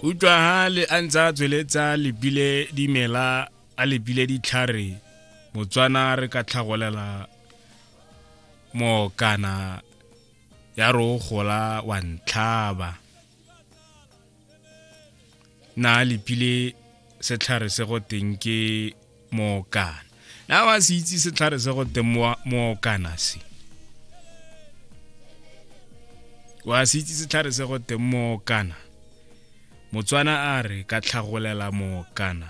utlwa ha le a ntse a tsweletsa lebile dimela a lebile ditlhare motswana re ka tlhagolela mookana ya re o gola wa ntlhaba na lepile setlhare se go teng ke mookana na ba se itse setlhare se go teng mookana se wa se itse setlhare se go teng mookana motswana a re ka tlhagolela mookana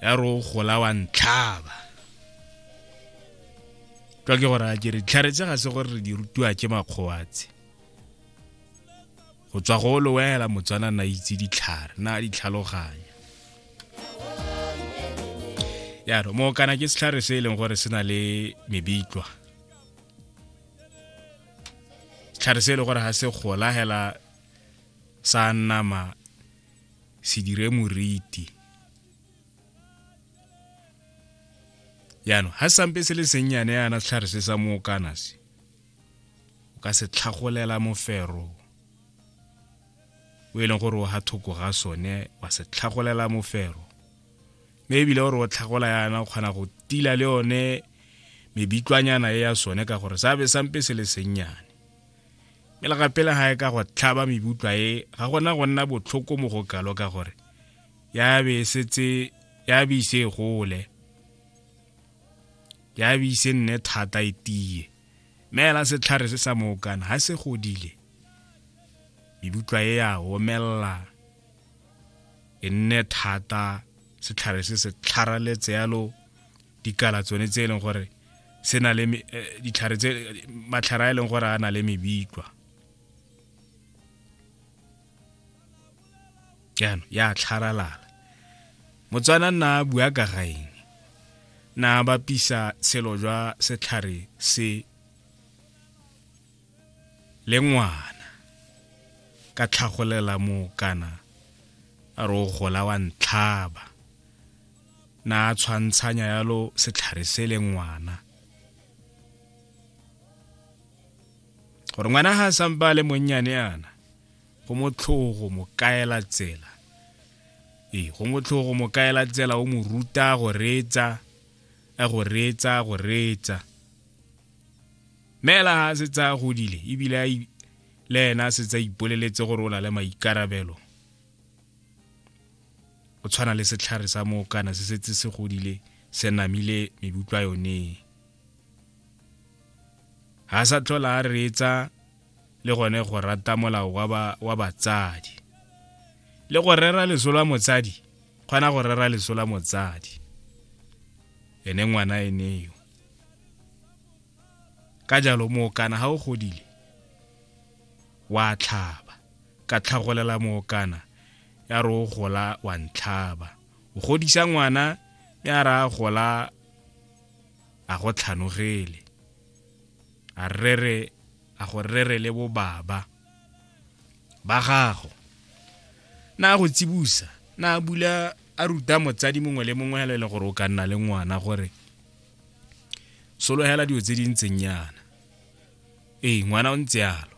ya re o gola wa ntlhaba ka ke gore a ke re ditlhare tse ga se gore re di rutiwa ke makgowa tse go tswa go lo wela motswana na itse ditlhare na ditlhaloganya yaro mo kana ke setlhare se e leng gore se na le mebitlwa setlhare se e leng gore ga se gola hela sa nama se dire moriti yaanong ga sampe se le sennyane yana setlhare se sa mookana se o ka se tlhagolela mofero o e leng gore o ga thoko ga sone wa se tlhagolela mofero mme ebile gore o tlhagola yana o kgona go tila le yone mebitlwanyana e ya sone ka gore sa be sampe se le sennyane mme le gape le ga e ka go tlhaba mebutlwa e ga gona go nna botlhoko mo go kalo ka gore ya be e setse ya be ise e gole ke a bise nne thata e tiye meela setlhare se sa mookana ga se godile mebutlwa e ya omelela e nne thata setlhare se se tlharaletse yalo dikala tsone tse e leng gore se na le eh, ditlhare tse matlhare a e leng gore a na le mebitlwa jaanong ya tlharalala motswana nna a bua ka ga eng na bapisa tshelo jwa setlhare se le ngwana ka tlhagolela moo kana a re o gola wa ntlhaba na a tshwantshanya yalo setlhare se le ngwana gore ngwana ga a sampa a le monnyane yana go motlhogo mo kaela tsela ee go motlhogo mo kaela tsela o mo ruta go reetsa a go reetsa go reetsa meela ga a se tsaya godile ebile le ena a se tsa ipoleletse gore o na le maikarabelo o tshwana le setlhare sa moo kana se setse se godile se namile mebutlwa yone ga sa tlhola a reetsa le gone go rata molao wa batsadi le go rera leso la motsadi kgona go rera leso la motsadi ene ngwana eneo ka jalo mookana ga o godile wa tlhaba ka tlhagolela mookana ya re o gola wa ntlhaba o godisa ngwana ya re a gola a go tlhanogele a rere a go rere le bobaba ba gago na go tsibusa na bula a ruta motsadi mongwe le mongwe le le gore o ka nna le ngwana gore sologela dilo tse di ntseng yana ee ngwana o ntse yalo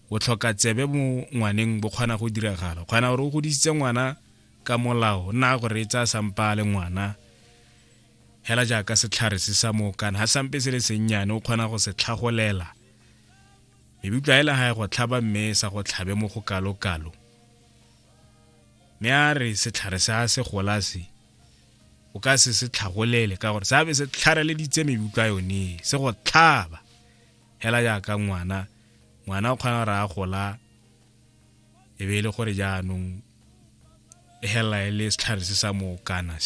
o tlhoka tsebe mo ngwaneng bo kgona go diragala kgona gore o godisitse ngwana ka molao nna gore e tsaya sampa le ngwana Hela jaaka setlhare se sa mookana, ga sampe se le sennyane o kgona go se tlhagolela. Mebutla hela ga e go tlhaba mme e sa go tlhabe mo go kalokalo. Mme a re setlhare se a se gola se, o ka se se tlhagolele ka gore seabe se tlhareleditse mebutla yone se go tlhaba hela jaaka ngwana ngwana o kgona gore a gola e be e le gore jaanong e helela e le setlhare se sa mookana